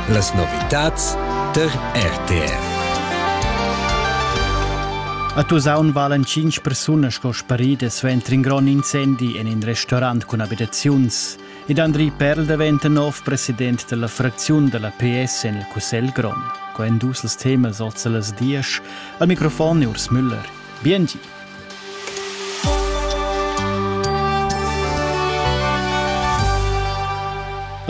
Las novitads tar RTR. A Tusaun valen cinc persunas sco sparidas suenter in grond incendi en in restaurant cun abitaziuns. Ed Andri Perl daventa nov president della fracziun della PS en il Cussegl Grond. Quai en dus temas oltre las dies. Al microfon Urs Müller. Biengi.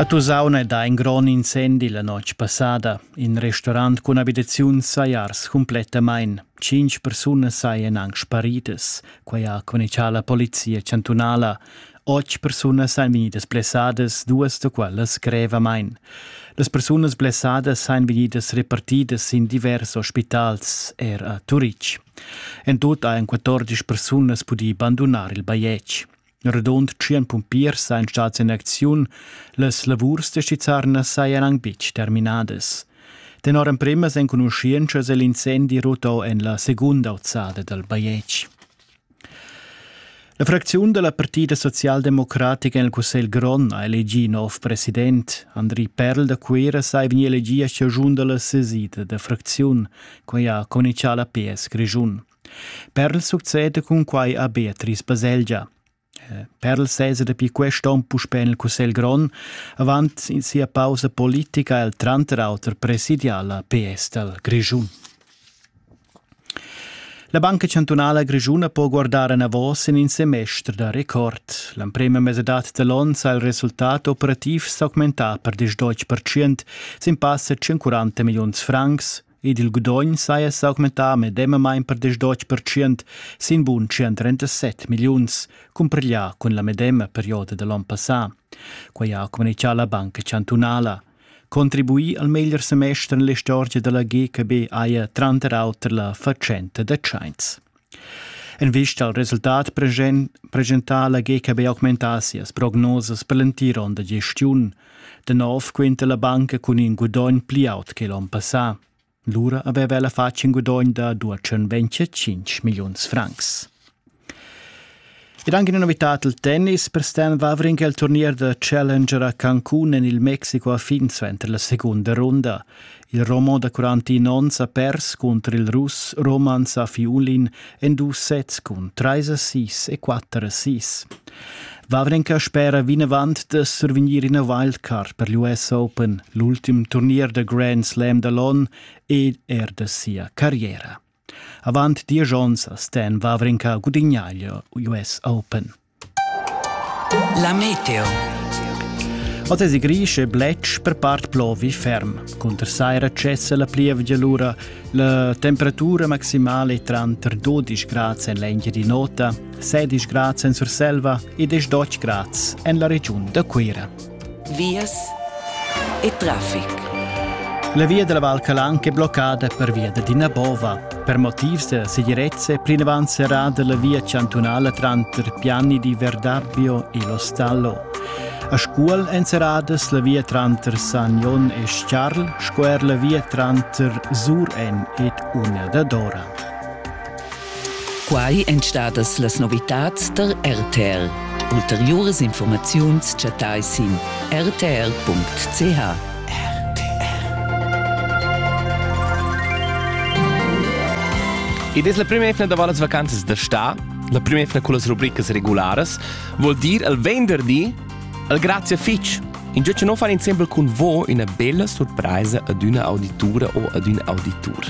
A Tusaun è dà in grond incendi la notg passada. In restaurant cun abitaziuns sajars cumplettamain. Cinq persunas sajan anc sparidas. Quai ha communicà la polizia chantunala. Otg persunas ein vegnidas blessadas, duas da quellas grevamein. Las persunas blessadas ein vegnidas repartidas in divers ospitals, er a Turitg. En tut ein 14 persunas pudi bandunar il bajetg. Rodond tschien pumpiers ein stats in acziun, las lavurs da Stizzarnas sajan anc betg terminadas. Tenor emprimas enconuschientschas è l'incendi ruto en la segunda ozzada dal bajetg. La fracziun da la Partida socialdemocratica en il Cussegl grond ha elegì nov president. Andri Perl da Cuira sa è vegnì elegì a chaschun da la sesida da fracziun. Quai ha conichà la PS Grischun. Perl succede cun quai a Beatrice Baselgia. Eh, Perl sesa dapi quest onn puspè en il Cussegl grond. Avant sia pausa politica è el tranter auter presidià la PS dal Grischun. La Banca chantunala grischuna po guardar enavos en in semester da record. L'emprema mesadad da l'onn sa il resultat operativ s'augmentà per 10% sin passa 140 milliuns francs ed il gudogn saja s'augmentà medemamain per 10% sin bun 137 milliuns, cumpiglià cun la medema perioda da l'onn passà. Quai ha communitgà la Banca chantunala. contribuir al meglier semester en l'istorgia da la GKB haja tranter auter la fatschenta da tschains. En vista al resultat presentà la GKB augmentà sias prognosas per l'entir onn da gestiun. Da nov quinta la banca cun in gudogn pli aut che l'onn passà. Lura aveva ella fatg in gudogn da duatschenventg tschintg milliuns francs. Ed anche una novità al tennis per Stan Wawrinck el turnier da Challenger a Cancun en il Mexico ha fin suenter la segunda runda. Il Romon da 41 onns ha pers cunter il Russ Roman Safiulin en dus sets cun treis a sis e quatter a sis. Wawrenka spera vinavant da survegnir ina wildcard per l'US Open, l'ultim turnier da Grand Slam da l'on ed er da sia carriera. Avant diesch onns ha Stan Wawrenka gudignà il US Open. La meteo. Oz es gris e bletsch per part plovi ferm. Cunter saira cessa la plievgia lura. La temperatura maximale è tranter 12 grad en l'engia di nota, 16 grad en Surselva e 10 grad en la regiun da Cuira. vias e traffic. La via della Val Calanca è bloccata pervia d'ina bova. Per motivs da segirezza è plinavant serrada la via chantunala tranter Piani di Verdabbio e lo Stallo. A Scuol èn serradas la via tranter Sagnon e Charl sco er la via tranter Sur en ed Una da Dora. Quai èn stadas las novitads tar RTL. Ulteriuras informaziuns chattai sin rtl.ch. Id es la prima efna da las vacanzas da sta, la prima efna con las rubricas regularas, vuol dir il venderdi al grazie fitch. In già non far insieme con voi una bella sorpresa ad una auditura o ad un auditur.